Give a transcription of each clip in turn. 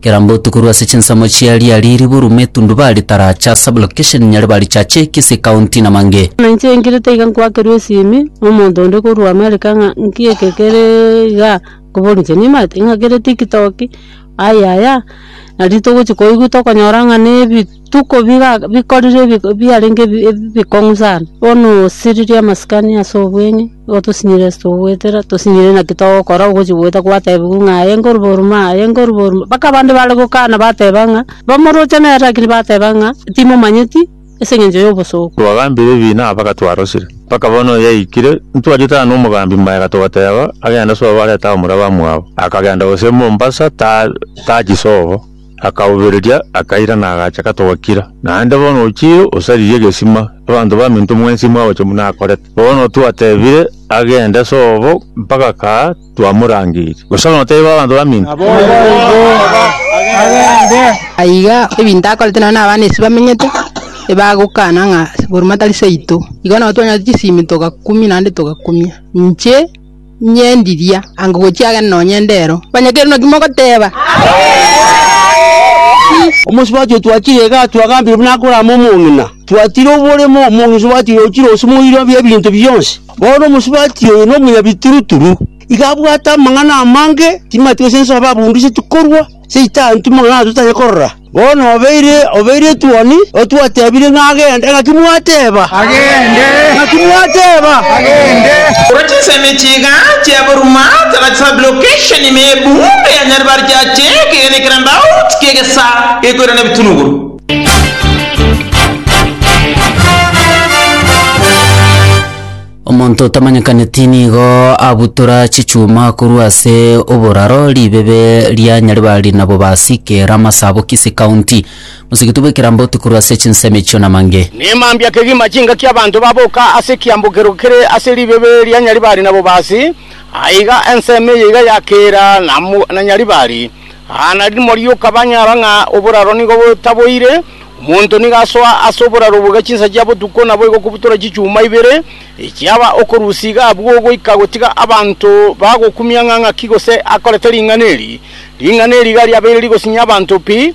Kera mbotuko rwase chinsemo chia ria riribu rumo etundubari taracha sublocation nyare barichache ekisi county na mange. Buna inche ingirite iga nkwakerwa esimi nomonto onde korwa America ng'a nki eke kere igaa nkoboria inche nimanyete ing'a kere tiktok, ayaya nari togochi koigwa tokonyora ng'a nebi. Tuko bikorire biarenge ebikong'u sana, bono osiririe amasikani ase obwenyo, nigo tosinyire ase togoetera, tosinyire naki togokora ogochia goeta gwatebiwa ng'a aye nkoruba orume aye nkoruba orume, mpaka abande bare gokana bateba ng'a bamoroche nere lakini bateba ng'a timomanyeti ase engencho ya obosooku. Twagambire ebi na mpaka twarosire. Mpaka bono yaikire, ntwariete aye na omogambi Maega togateba, agende sobo arete abamura bamwabo. Akagenda gose Mombasa, tachi sobo. Akabobereria, akairana, agacha gatoakire. Naende bono ochire osaririe egesima, abanto baminto mwensi mwagocha buna akorete. Bono twatebire agende sobo mpaka kaa twamorangeiri. Gose bono taibo abanto baminto? Aiga ebinto akorete nao n'abana ase bamenyete, ebagokana ng'a Buruma tari seito. Igo nao twanyorete chisimi togakumia naende togakumia. Inche. nyendiria anga gochiagera nonya endero, onye kere naki mogoteba. Omosubati oo twachire iga atwo agambire buna akorama omong'ina. Twatire oboremo, omosubati oyo ochire ose moiro bw'ebinto bionsi. Bono omosubati oyo nomonyabituruturu, iga abwate amang'ana amange, timanyeti gose nsoa ababundu ase tikorwa, Seitani timong'ana totari korora. Bono obeire, obeire etuoni, otwatebirie ng'a agende, naki mwateba, Agende! Naki mwateba, Agende! Korwa chinsemo echi iga chiaboruma tara chisabire okesheni ime y'ebuundo ya Nyaribari chiache ekeegena ekerandauti ki'egesa gekoirana ebitunuguru. Omonto otamanyekaneti nigo abutora chichuma korwa ase oboraro ribebe ria Nyaribari na Bobasi, Kera, Masabo, Kisii County. Mosigiti bw'ekeramboti korwa ase chinsemo echio namange. Ne mambia kegima chingaki abanto baboka ase ekiambokero kere ase ribebe ria Nyaribari na Bobasi, aiga ensemo eye iga ya Kera na Nyaribari. Aa nari morioka banyora ng'a oboraro nigo botaboire, omonto nigo asoa ase oboraro obwo iga chinsa chia botuko naboigo okobutora chichuma ibere, echiaba okorusia iga abwo goika gotiga abanto bagokumia ng'a ng'aki gose akorete ring'ana eri. Ring'ana eri iga riabeire rigosinyia abanto pi.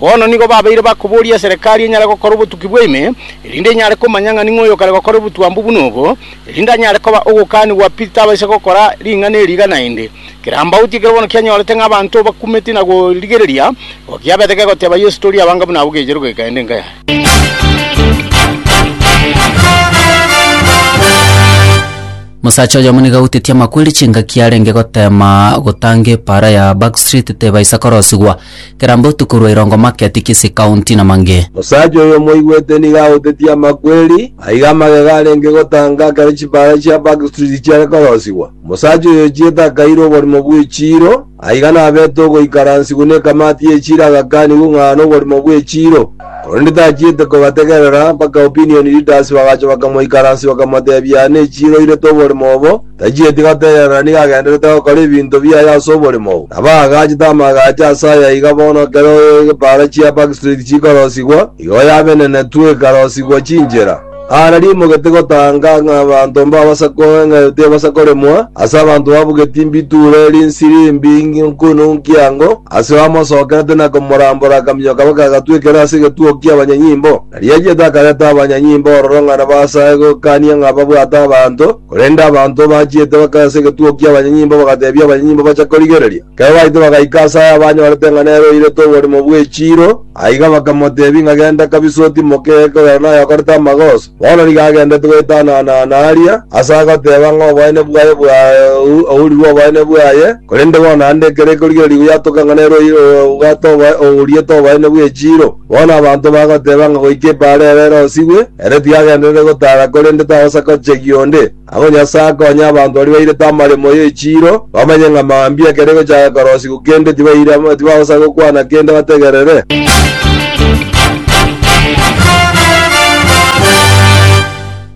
Bono nigo babeire bakoboria eserekari enyare gokora obotuki bw'ime, erinde inyare komanya ng'a ning'o oyokare gokora obotwambu buna obo, erinde anyare koba ogokaanigwa pi tabaisa gokora ring'ana eri iga naende. Kerambauti ekero bono kianyorete ng'a abanto bakumeti na korigereria, igo kiabete kegoteeba Yeso, Tori abanga buna abwo gecherwe gekaende enka yaye. Omosacha oyomo nigo autetie amakweri chingaki arenge goteema gotanga epaara ya Backstreet tebaisa korosigwa. kera mbotuko rwa irongo market Kisii county na mange. Omosacha oyo omoigwete nigo agotetie amakweri, aiga amagega arenge gotanga ekero chipaara chia Backstreet chiare korosigwa. Omosacha oyo ochiete akairwa oborimo bw'echiiro, aiga nabete ogoikaransigwa nekamati y'echiiro agakanigwa ng'a aane oborimo bw'echiiro. Korende tachiete kobategerera, mpaka opinion leaders bagacha bakamoikaransia bakamotebia aane echiiro oirete oborimo obo, Tachieti gotegerera nigo agenderete gokora ebinto biaye ase oboremo oo, nabo aagachete amaagacho ase aya iga bono ekero epaara chia Backstreet chikorosigwa, igo yabenenetwe ekarosigwa chinchera. Aare rimogete gotanga ng'a abanto mbabasa koe ng'a tibabasa koremwa, ase abanto babugeti mbituure rinsiri mbi nkunu nkiango, ase bamosokerete na komorambora akaminyo kabo kagatwekera ase egetuo kia abanyanyimbo. Nariachiete akareta abanyanyimbo ororo ng'a nabasae gokania ng'a babwate abanto, Korende abanto bachiete bakaya ase egetugo ki'abanyanyimbo bagateebia abanyanyimbo bacha korigereria. Ekero baito bagaika ase aye abanyorete ng'a nere oirete oborimo bw'echiiro, aiga bakamoteebia ng'a genda kabisa otimoke egeka oyo naye okorete amagoso. Bono nigo agendete goetanana-ana aria, ase agoteeba ng'a oboene bwaye bwaurirwe oboene bwaye, korende bono naende ekero ekorigereria goyatoka ng'a nere oiriete oboene bw'echiiro. Bono abanto bagoteeba ng'a goika epaara ere erosigwe, Ere tiagenderete gotaara korende tagosa gochegia onde. Agwo Nyasae akonye abanto baria bairete amaremo y'echiiro, bamanye ng'a mambia ekero egochaka korosigwa kende tibaire amo, tibagosa gokwana kende bategerere.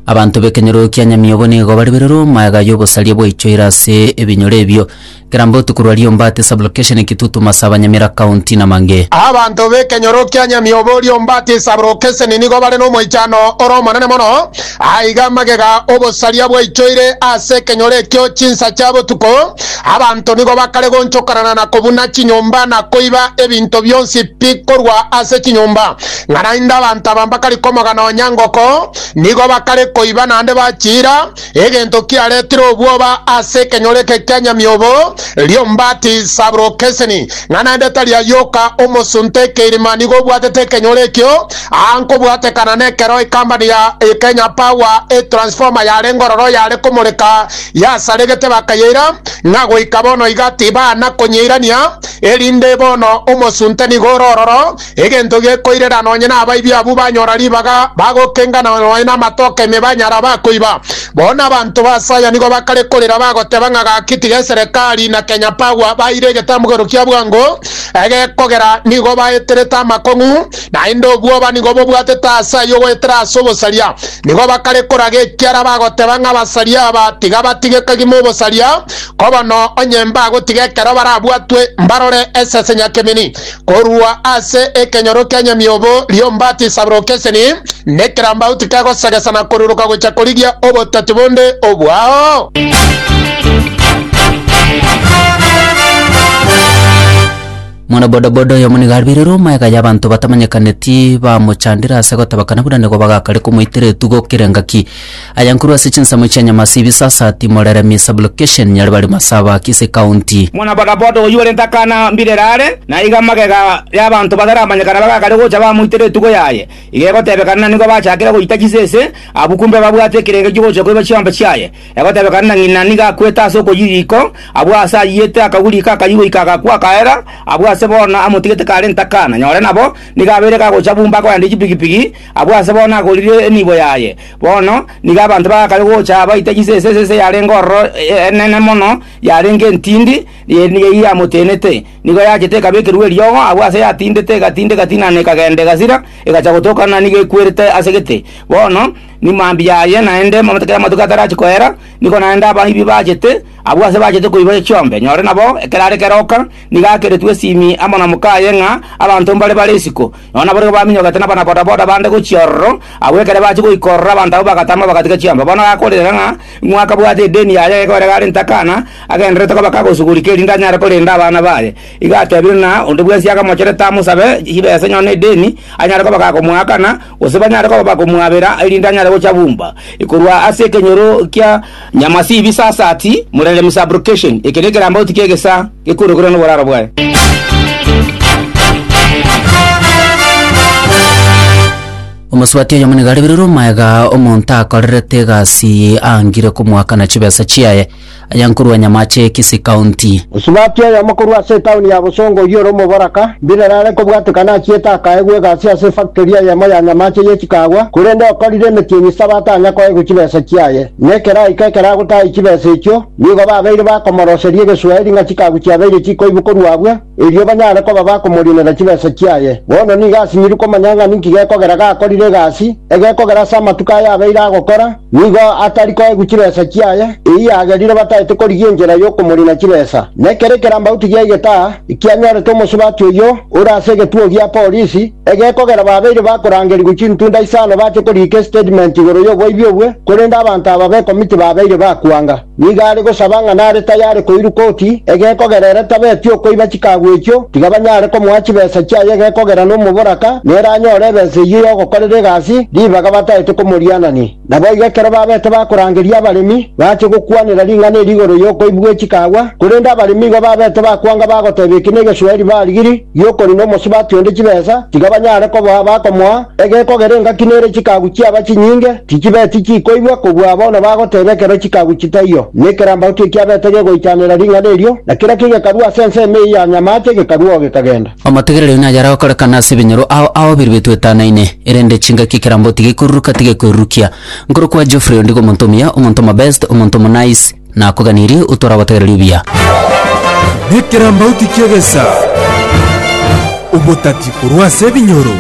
Abanto b'ekenyoro kia Nyamiobo nigo baribererwe omoegayo obosaria bwaichoire ase ebinyoro ebio. Kera mbotuko rwa Riombati Sublocation Kitutu Masaba Nyamira County Namange. Abanto b'ekenyoro kia Nyamiobo Riombati Sublocation nigo bare nomoichano ore omonene mono. Aiga amagega obosaria bwaichoire ase ekenyoro ekio chinsa chia botuko. Abanto nigo bakare gonchokanana na kobuna chinyomba na koiba ebinto bionsi pi korwa ase chinyomba. Ng'a naende abanto aba mbakari komoga nonya ngoko, nigo bakare koiba naende bachiira. Egento kiaretire obwoba ase ekenyoro eke kia nyamiobo, Liombati Sabrokeseni, ng'a naende tari ayoka omosunte ekeirima nigo obwatete ekenyoro ekio, aa nkobwatekana nekero ekambani ya Kenya Power etransformer yarenge ororo yare komoreka yasaregete bakayeira, ng'a goika bono iga tibana konyeirania, erinde bono omosunte nigo ore ororo Egento gekoirera nonye nabaibi abwo banyora ribaga bagokenga na nonye namatoke ime banyara bakoiba. Bono abanto ba Asaya nigo bakare korera bagoteba ng'a gaki tiga eserekari na Kenya Power baire egetamgero kia bwango egekogera nigo baeterete amakong'u naende obwoba nigo bobwatete ase ayio goetera ase obosaria nigo bakare koraga ekiara bagoteba ng'a abasaria aba tiga batige kagima obosaria kobono onye mbagotiga ekero barabwatwe mbarore esese nyakemeni Korwa ase ekenyoro kia nyamiobo ri'ombatisa brokeseni, nekerambauti kegosegesa na koruruka gocha korigia obotati bonde obwao. Mwana bodaboda oyomo nigo aribeirwe omaega y'abanto batamanyekaneti bamochandire ase gotabakana buna nigo bagakare komoitera etugo kera engaki. Aya nkorwa ase chinsemo chia Nyamasi, Bisasati, Moreremi, Sublocation, Nyaribari, Masaba, Kisii County. Muna Bakaboto oyio orente akana mbirere are, na iga magega y'abanto bataramanyekana bagakare gocha bamoitera etuko yaye. Iga egotebekana na nigo bachakire goita chisese, abuku mbe babwate ekerenge gi'ogocha koiba chiombe chiaye. Egotebekana na ng'ina nigo akwete ase okoyia riiko, abwo aase ayiyete akagwa riiko akayia goika agakwa akaera, abwo aase bono amotigete karente akana, nyore nabo nigo abeire gagocha bumba akoendia chipigipigi, abwo aase bono agorire enibo yaye. Bono nigo abanto bagakare gocha abaite chisese ase ense yarenge ororo enene mono, yarenge entindi, eye nigo eyio yamotenete. Nigo yachete ekabekerwa eriogo agwo aase yatindete, egatindeka tina na ekagenda egasira, egacha gotoka na nigo ekwerete ase gete. Bono ni mambia aye naende ekero amatuko atarachi koera, nigo naende abaibi bachete, abwo aase bachete koiba echiombe. Nyore nabo, ekero are keroka, nigo akeretwe esimi amo na mokaye ng'a abanto mbare bare isiko. Nonya naboigo baminyogete nabana-bodaboda bande gochia ororo. Agwo ekero bachia goika ororo abanto abwo bagatama bagatiga chiamba. Bono gakoorire ng'a ng'o akabwate edeni yaye egekogera gare intwe akana, agendererete koba kagosuguria kerinde anyare korenda abana baye. Igo atebire na onde bwensi akamocherete amosabe chibesa nonya edeni, anyare koba gakomoakana, gose banyare koba bakomwabera erinde anyare gocha bumba korwa ase ekenyoro kia Nyamasibi sasati, murere misabrukation, eke nekerambauti ki'egesaa gekuorokerwa noboraro bwaye. Omosubati oyomo nigo areberirwe omoega, omonto akorerete egasi aangire komoakana chibesa chiaye, aya nkorwa nyamache Kisii County. Osubati oyomo korwa ase etaoni ya Bosongo oyio ore omoboraka, mbirere are kobwatekana achiete akaegwa egasi ase efactory eyemo ya nyamache ye chikaagwa, korende okorire emetienyi saba atanya koegwa chibesa chiaye. na ekeraika ekeragotaai chibesa echio, nigo babeire bakomoroseria egesuaeri ng'a chikagu chiabeire chikoibokorwa abwo, erio banyare koba bakomorinera chibesa chiaye. Bono nigo asinyirwe komanya ng'a ninki gekogera gakorire egasi, egekogera ase amatuko aya abeire agokora nigo atari koegwa chibesa chiaye, eyio yagerire bataete korigia enchera y'okomorina chibesa. Nekero ekerambauti giaigete aa, ekianyorete omosubati oyio ore ase egetuo gia polisi, Egekogera babeire bakorangerigwa chintunda isano bache koriika estatement igoro y'oboibi obwe, korende abanto aba b'ekomiti babeire bakwanga. Nigo are gosaba ng'a nare tayare koirwa koti, egekogera ere tabeti okoiba chikagu echio, tiga banyare komoa chibesa chiaye egekogera nomoboraka nere anyore ebesa eyio y'ogokorera egasi ribaga bataete komorianania. Naboigo ekero babete bakorangeria abaremi, bachie gokwanera ring'ana eri igoro y'okoibwa gwe chikaagwa, korende abaremi igo babete bakwanga bagoteba eki negesueri barigiri gi'okorina omosubati onde chibesa, tiga banyare koboa abakomoa, egekogera engaki nere chikagu chiaba chinyinge, tichibeti chikoigwa kobua bono bagoteba ekero chikagu chitaiyo, nekerambaotu ekiabete gegoichanera ring'ana erio, na kera kegekarua ase ensemo eyio ya nyamache, gekarua oo gekagenda. Omotegereri oyio nayare gokorekana ase ebinyoro ao ao biria bitwetanaine, erende chingaki ekerambo tigekoruruka, tigekoirurukia. Nkorokwa Geoffrey ondigo omonto omuya, omonto omobest, omonto omonice, nakoganirie otware obotegereri obuya. Nekerambauti ki'egesaa, obotati korwa ase ebinyoro.